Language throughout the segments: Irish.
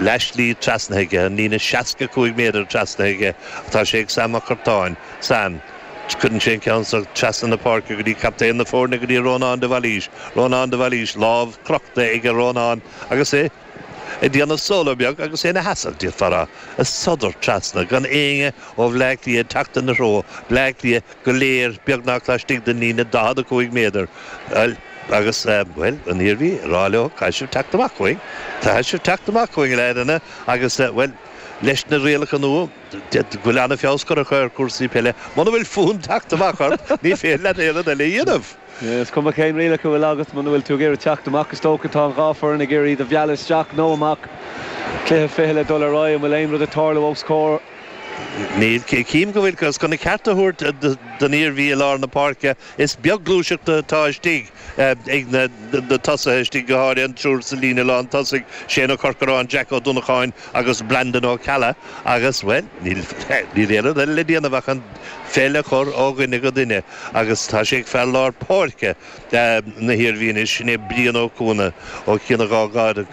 Leath slí trasnaithe aige, an líne 65 méadar trasnaithe aige, atá sé ag Sam Mac Cartáin. Sam. Cuireann sé an ceann seo trasna na páirce go dtí captaen na foirne, go dtí Rónán de Bhailís. Rónán de Bhailís, lámh crochta aige Rónán agus é ag déanamh solo beag agus é ina sheasamh, déarfá, ag sodar trasna gan éinne ó Bhleá Cliath teacht ina threo. Bleá Cliath. go léir beagnach laistigh den líne 45 méadar, bhuel, agus, bhuel, an Iarmhí ag rá leo, caithfidh sibh teacht amach chugainn, caithfidh sibh teacht amach chugainn, a fhearainne, agus, bhuel, leis na rialacha nua, d'fhéadfadh go bhfuil an-fheabhas curtha ar chúrsaí peile, muna bhfuil fonn teacht amach ort, ní féidir leat aon rud eile a dhéanamh. Is cuma cén rialacha a bhfuil agat, muna bhfuil tú ag iarraidh teacht amach, is dócha tá an dhá foireann ag iarraidh iad a mhealladh isteach nó amach. Cluiche fichille ag dul ar aghaidh, an bhfuil aon rud ag tarlú os comhair? Ní chím go bhfuil. Agus chun a ceart a thabhairt don Iarmhí i lár na páirce, is beag gluaiseacht atá istigh ag na tosaithe istigh, go háirithe an triúr sa líne lán tosaigh, Shane Ó Corcaráin, Jack Ó Donnacháin agus Brandon Ó Ceallaigh agus, bhuel, níl aon rud eile le déanamh ach an pheil a chur ó dhuine go duine. Agus tá sé ag fear lár páirce na hIarmhí anois, sin é Brian Ó Cuana. Ó Chionn Átha Gad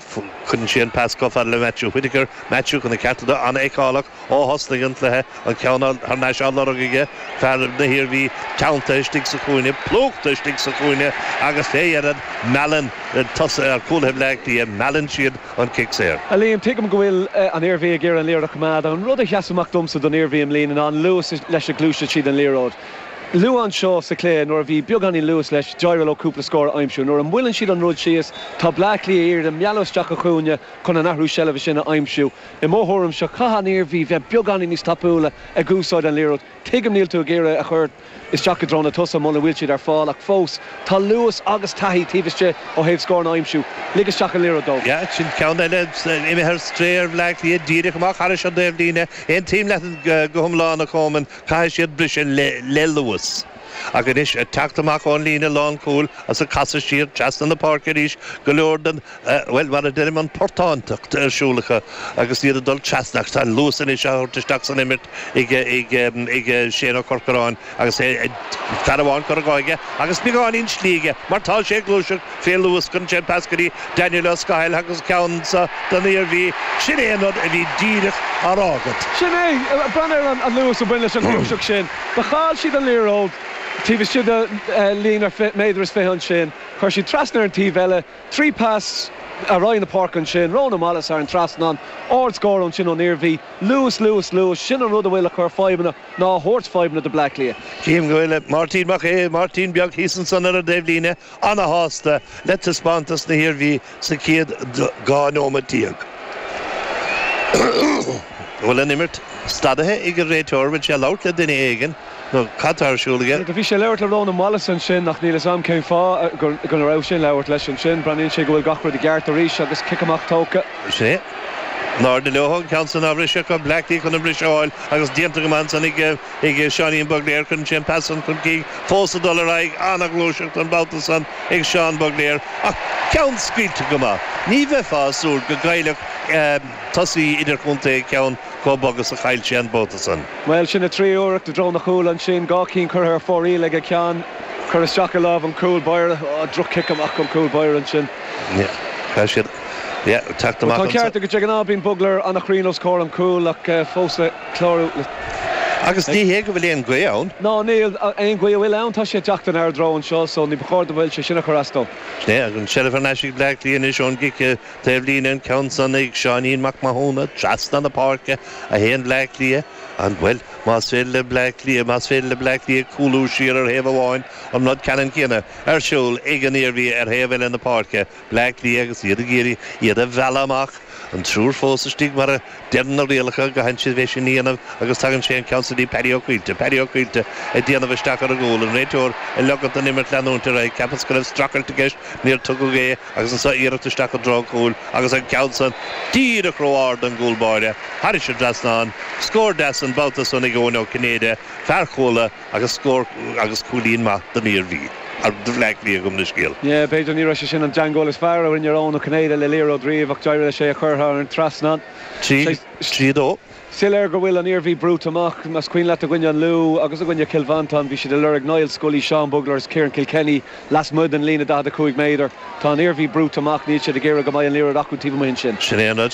cuireann sé an pas chomh fada le Matthew Whittaker. Matthew, chun a cheart a thabhairt dó, an-fheiceálach ó thosnaigh an cluiche, an ceann thar n-ais á lorg aige, fear na hIarmhí teanntaithe istigh sa chúinne, plúchta istigh sa chúinne agus fé dheireadh meallann tosaithe, cúlaithe Bhleá Cliath, meallann siad an cic saor. A Liam, tuigim go bhfuil an Iarmhí ag iarraidh an liathróid a choimeád, ach an rud a sheas amach domsa don Iarmhí i mbliana ná an luas leis a ngluaiseann siad an liathróid. Luath anseo sa chluiche, nuair a bhí beagáinín luais leis, d'éirigh leo cúpla scór a aimsiú. Nuair a mhoilleann siad an rud síos, tá Bleá Cliath ag iarraidh iad a mhealladh isteach sa chúinne chun an athrú seilbhe sin a aimsiú. I mo thuairimse, caithfidh an Iarmhí bheith beagáinín níos tapúla ag úsáid an liathróid. Tuigim níl tú ag iarraidh a chur isteach i dtreo na tosaithe muna bhfuil siad ar fáil, ach fós, tá luas agus taithí taobh istigh ó thaobh scóranna a aimsiú. Lig isteach an liathróid dóibh. Yeah, sin ceann eile. Imithe ar strae ar Bhleá Cliath díreach amach thairis an taobhlíne. Aontaím leat go hiomlán, a Choman. Caithfidh siad briseadh le luas. Ach anois, ag teacht amach ón líne lánchúil is ag casadh siar trasna na páirce arís, go leor den, bhuel, mar a deirim, an portántacht ar siúl acu agus iad ag dul trasna ach tá an luas anois á thabhairt isteach san imirt ag, ag, ag Shane Ó Corcaráin agus fear amháin curtha aige agus beagáinín slí aige mar tá sé ag gluaiseacht Fé luas cuireann sé an pas go dtí Daniel Ó Scathail agus seans don Iarmhí, sin é an rud a bhí díreach á rá agat. Sin é, breathnaigh ar an luas a bhain leis an ghluaiseacht sin. Do chaill siad an liathróid taobh istigh de líne méadar is fiche ansin, chuir siad trasna ar an taobh eile, trí pas ar aghaidh na páirce ansin, Ronan Wallace thar an trasnán, ard scór ansin ón Iarmhí. Luas, luas, luas, sin an rud a bhfuil ag cur fadhbanna nó ag tabhairt fadhbanna do Bleá Cliath. Chím go bhfuil Máirtín Mac Aodha, Máirtín Beag thíos ansan ar an dtaobh líne, Ana-shásta le taispeántas na hIarmhí sa chéad 12 nóiméad. An bhfuil an imirt stadaithe ag an réiteoir? Bhfuil sé ag labhairt le duine éigin? Nó cad tá ar siúl aige? Bhuel, bhí sé ag labhairt le Rónán Wallace ansin ach níl fhios a'm cén fáth go raibh sé ag labhairt leis ansin. Breathnaíonn sé go bhfuil gach rud i gceart arís agus cic amach tógtha. Sin é. In airde leo, an ceann san á bhriseadh acu, Bleá Cliath chun an briseadh a fháil agus déanta go maith ansan ag. Ag Seáinín Bugler cuireann sé an pas san chun cinn fós ag dul ar aghaidh. An-ghluaiseacht an babhta san ag Seán Bugler ach ceann scaoilte go maith. Ní bheifeá ag súil go gcaillfeadh tosaí idirchontae ceann chomh bog is a chaill sé an babhta san. Bhuel sin a thríú iarracht i dtreo na chúl ansin, dhá cinn curtha ar fóraoil aige, ceann curtha isteach i lámh an chúl báire. Droch-chic amach ón gcúl báire ansin. Tá an ceart agat, de ghnáth bíonn Bugler an-chruinn os comhair an chúil ach fós. clárú le. Agus ní hé go bhfuil aon ghaoth ann. Ná níl. Aon ghaoth a bhfuil ann, tá sé ag teacht in ár dtreo anseo, so ní ba chóir go mbeadh sin ag cur as dó. Tá an tseilbh ar ais ag Bleá Cliath anois ón gcic taobh líne, an ceann san ag Seáinín Mac Mathúna trasna na páirce, 1 Bleá Cliath, an, bhuel, más féidir le Bleá Cliath, más féidir le Bleá Cliath cúlú siar ar thaobh amháin, an rud ceannann céanna ar siúl ag an Iarmhí ar thaobh eile na páirce. Bleá Cliath agus iad ag iarraidh iad a mhealladh amach, an triúr fós istigh mar a deireann na rialacha go gcaitheann siad é sin a dhéanamh agus tugann sé an ceann san go dtí Paddy Ó Caoilte, Paddy Ó Caoilte ag déanamh isteach ar an gcúl, an réiteoir ag ligint don imirt leanúint ar aghaidh cheapas go raibh streachailt i gceist níor tugadh é agus anso iarracht isteach i dtreo an chúil agus an ceann san díreach ró-ard don gcúl báire thairis an trasnán, scór deas an babhta san ag Eoin Ó Cinnéide, fear Chuala. Agus scór agus cúilín maith don Iarmhí nó do Bhleá Cliath, gabh mo leithscéal. Yeah, b'fhéidir, ní raibh sé sin an teangmháil is fearr a rinne Eoin Ó Cinnéide le liathróid riamh ach d'éirigh leis é a chur thar an trasnán. 3-2. Soiléir go bhfuil an Iarmhí brúite amach. Más cuimhin leat i gcoinne an Lú agus i gcoinne Chill Mhantáin, bhí siad ag lorg Niall Scully, Seán Bugler is Ciaran Kilkenny lasmuigh den líne 45 méadar. Tá an Iarmhí brúite amach, níl siad ag iarraidh go mbeidh an liathróid acu taobh amuigh ansin. Sin é an rud.